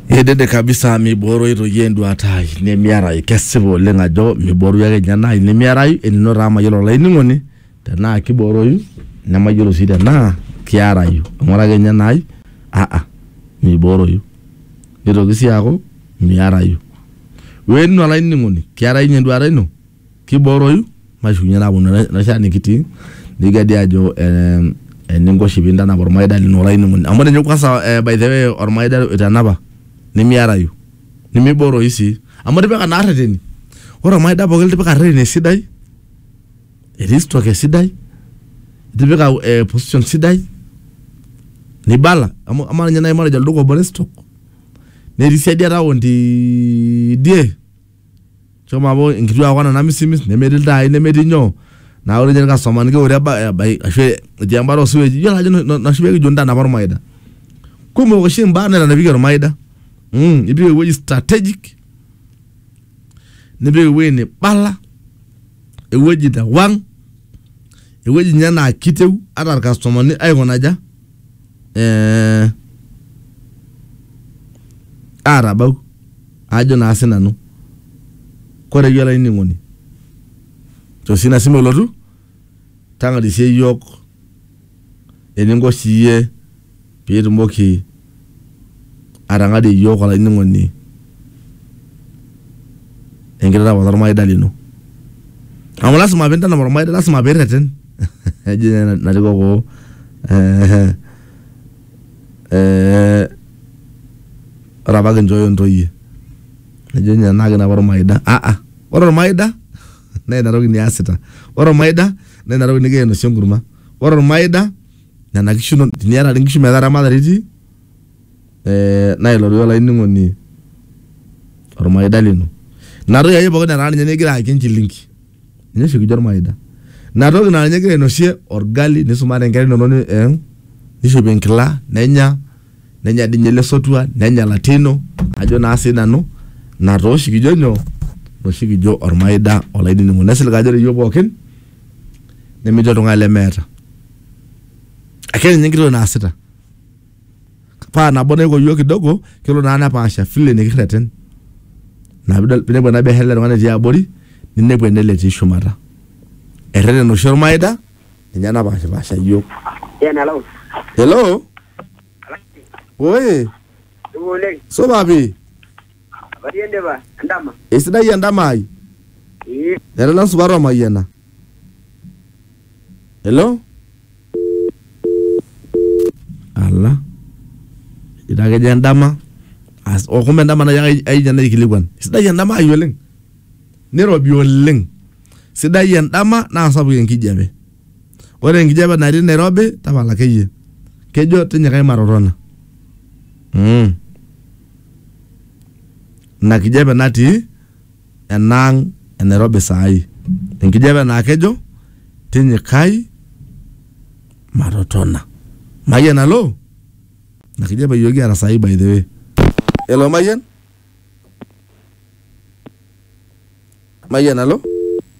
Edede kabisa mibooroi toi enduata ai nemiarai. Kesipa oleng ajo mibooroi ake ninye ena ai nemiarai enino taa mayiolo olainining'oni tenaa kibooroyu nemayiolo sii tenaa kiarayu. Amu ore ake ninye ena ai aa mibooroyu. Nitoki sii aaku miarayu. Weeninu olainining'oni kiarayu ninye enduata ino Kibooroyu mashukunye naaponu ena shan nikitii nikigadi aajo ee eninko oshi piintanap ormaida lino olainining'oni. Amu ore ninye kwanza by the way ormaida oitanapa nemiarayu, nemibooroyu sii amu itipika naa rreteni. Ore ormaida pookin litipika rreteni esidai, etii stock esidai, itipika ee position sidai nibala amu amaa ninye nai matejo olduka obo le stock netii siadi e town tidie. Shomo amu inkituak kuna namisimis nemetii iltai nemetii nyoo naa ore ninye irkastomani keure eba- ebai ashu etii embata osiwej iyiolo ajo ina oshi pekijo intanapa ormaida kumok oshi imbaa naitanapieki ormaida mh ipik ewueji strategic nipik ewueji nibala ewueji newang ewueji inye naa kiteu ata irkastomani aikuna aja. eh, atabau ajo naa sinanu kore iyie olainining'oni tosi ina simu elotu tang'arisie iyiook eninko siiyie piitumoki atang'arie iyiook olainining'oni enkitanapat ormaida lino amu lasima pintanap ormaida lasima pirreten. Jina naliko ko eh, eh, ore apa kinchooyo ntoyie nejo ninye tenaa kinapa ormaida ah ah ore ormaida naa ina toki niasita ore ormaida naa ina toki nigira ainosie enkurma ore ormaida nena kishu inono teniata dii nkishu metaa eramatare itii eh, naa ilo doi olainining'oni ormaida lino ina toki ake pookin netaa ninye nikigira ayaki enchilingi. Neshukujo olmaida. Ina toki naa ninye egira ainosie olgali nisumare nkera inono ee nishopie enkila nenya, nenya dii ninye ele sotua nenya latia ino ajo naa sii nanu ina taa oshi kijo nyoo ina oshi kijo olmaida olainining'oni. Nesilig ajo ore iyiok pookin nemetii oltung'ani lemeeta. Ake ninye enkiti toki naasita. paa nabo naiko iyiook kidogo kelo naa nepaasha vile nikirreten ina piidol pinepu ena biashara ele tung'ani etii abori ninepu enele etii shumata erreten oshi ormaida ninye napashipasha iyiook Yen alau. hello oye Dugu oleng. supa pii Barie ndipa endama. esidai endama ai Ee. nena supat omayiana hello ala itakejo endama as okumbe endama nai ai- aija naikilikuan sidai endama ai oleng nirobi oleng sidai endama naa sapuk enkijape ore enkijape natii nairobi tapala akeyie kejo tinyikai matotona mm. ina kijape natii enaang e Nairobi saai. Enkijape naa kejo tinyikai matotona. Mayian alo? Ina kijape iyiook kiata saai by the way. Elo Mayian? Mayian alo?